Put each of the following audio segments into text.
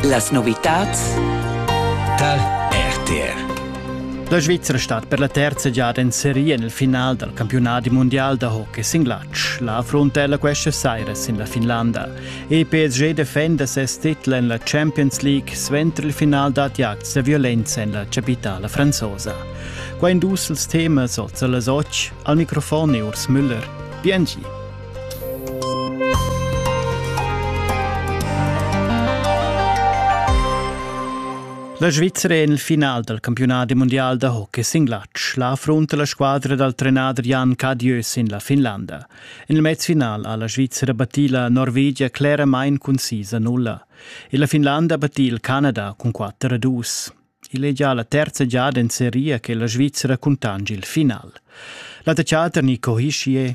Las novitads tar RTR. La Svizzera stat per la terza giada in seria nel final dal campionat mondial da hockey sin glatsch. La affruntella questa saira sin la Finlanda. E PSG defenda ses titel en la Champions League suenter il final dad acts da violenza en la capitala franzosa. Qua in dus ils temas oz las otg. Al microfon è Urs Müller. Biengi. La Svizra è il final dal campiunadi mundial da hockey sin glatsch. La affrunta la squadra dal trenader Jan Cadieu sin la Finlanda. En il mezfinal ha la Svizra battì la Norvegia cleramain concisa nulla. E la Finlanda battì il Canada cun 4 a 2. Igl è già la terza giada in seria che la Svizra cuntangi il final. La tecciata Nico Hischier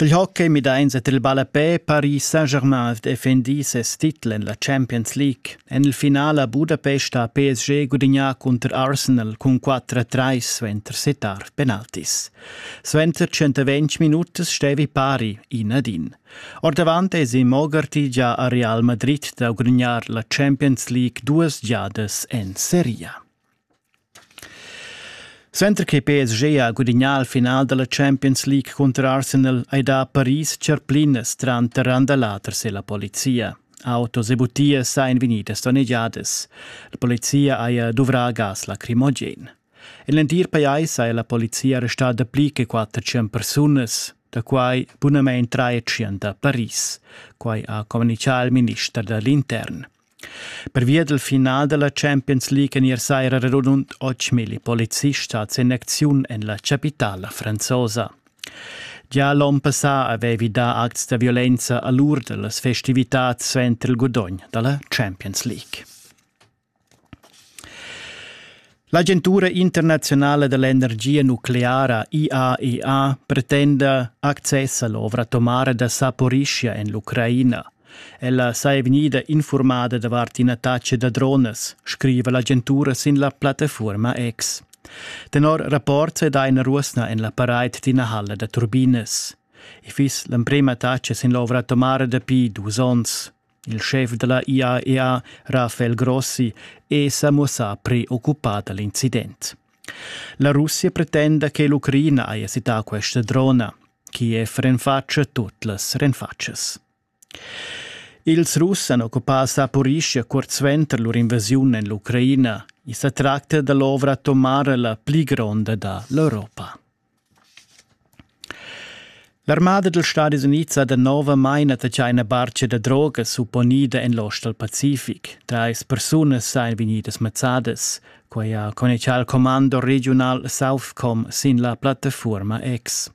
Dil hockey midein set il ballapè Paris Saint-Germain ed effendi ses titel en la Champions League. En il finale a Budapest ha PSG gudignà cunter Arsenal cun 4-3 suenter settar penaltis. Suenter 120 minutas stevi pari in ad in. Ordavant esi Mogarty gia a Real Madrid da gudignar la Champions League duas giadas en seria. Suenter che PSG ha gudignà il final da la Champions League cunter Arsenal ei dà Paris tscherplinas tranter Randalaters e la polizia. Autos e butias ein vegnidas donnegiadas. La polizia haja duvrà gas lacrimogen. En l'entir pajais ha la polizia arrestà pli che 400 persunas, da quai bunamain 300 a Paris. Quai ha communichà il minister dall'intern. Pervia dal final da la Champions League en ier saira radund 8.000 polizists stads en acziun en la chapitala franzosa. Gia l'onn passà avevi dà acts da violenza a l'ur da las festivitads suenter il gudogn da la Champions League. L'agentura internaziunala dell'energia nucleara IAEA pretenda access all'ovra atomara da Saporischia en l'Ucraina. Ella saja vegnida informada davart ina taccia da dronas, scriva l'agentura sin la plattafuorma X. Tenor rapport se dà ina ruosna en la paraid d'ina halla da turbinas. I fiss l'emprema taccia sin l'ovra atomara dapi dus onns. Il schef dalla IAEA, Rafael Grossi, è sa muossà preoccupà da l'incident. La Russia pretenda che l'Ucraina haja cità questa drona. Kiev renfatscha tut las renfatschas. Ils Russ han occupà Saporischia curt suenter lur invasiun en l'Ucraina. I sa tracta da l'ovra atomara la pli gronda da l'Europa. L'armada dals Stadis Unids ha danovamain attaccà ina bartga da droga supponida en l'ostal pacific. Trais persunas sain vegnidas mazzadas. Quai ha connexà il commando regiunal Southcom sin la plattafuorma X.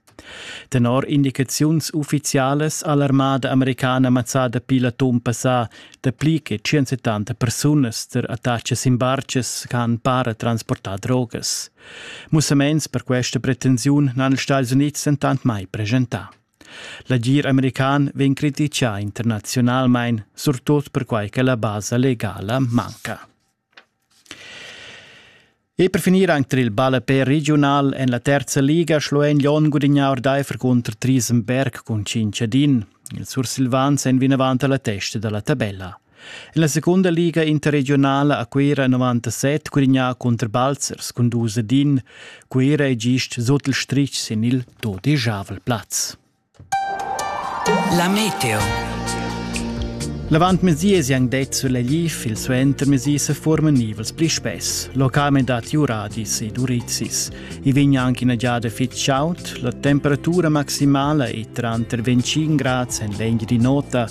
Tenor indicaziuns uffizialas ha l'armada americana mazzada pir l'atun passà dapli che 170 persunas tar attacks sin bartgas ch'han para transportà drogas. Mussaments per questa pretensiun n'han ils Stati Unids dentant mai presentà. L'agir american vegn criticà internaziunalmain, surtut perquai che la basa legala manca. E per finir anche il ballapé regional en la terza liga schloen Lyon gudignà ordaifer contro Triesenberg con 5 din. Il Sursilvans è vinavant alla testa della tabella. En la secunda liga interregionala a Cuera 97 cunignà cunter Balzers cun dus ed in. Cuera è gist sut il strich sin il dodigiavel plaz. La meteo. L'avantmesi è anche detto sulla GIF, il suentermesi se formen nivels pli spess. Localment dati Uradis ed Urizis. I vegn anche una giada fit chaud, la temperatura maximala è tra 25 gradi en legna di nota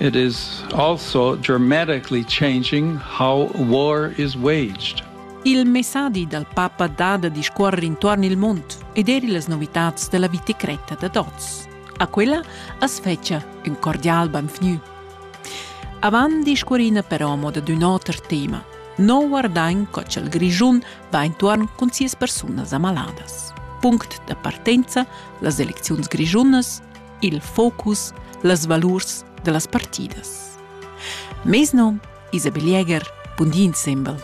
It is also dramatically changing how war is waged. Il messadi dal papa dà da discuorrer intuorn il mund ed eir illas novitats da la vita cretta dad oz. A quella as fetscha ün cordial benvgnü. Avant discuorina però mo dad ün oter tema. Non guardain co ch'el Grischun va intuorn cun sias persunas amaladas. Punct da partenza, las elecziuns grischunas, il focus, las valurs da las partidas. Mes nom Isabel Jäger, bun di insembel.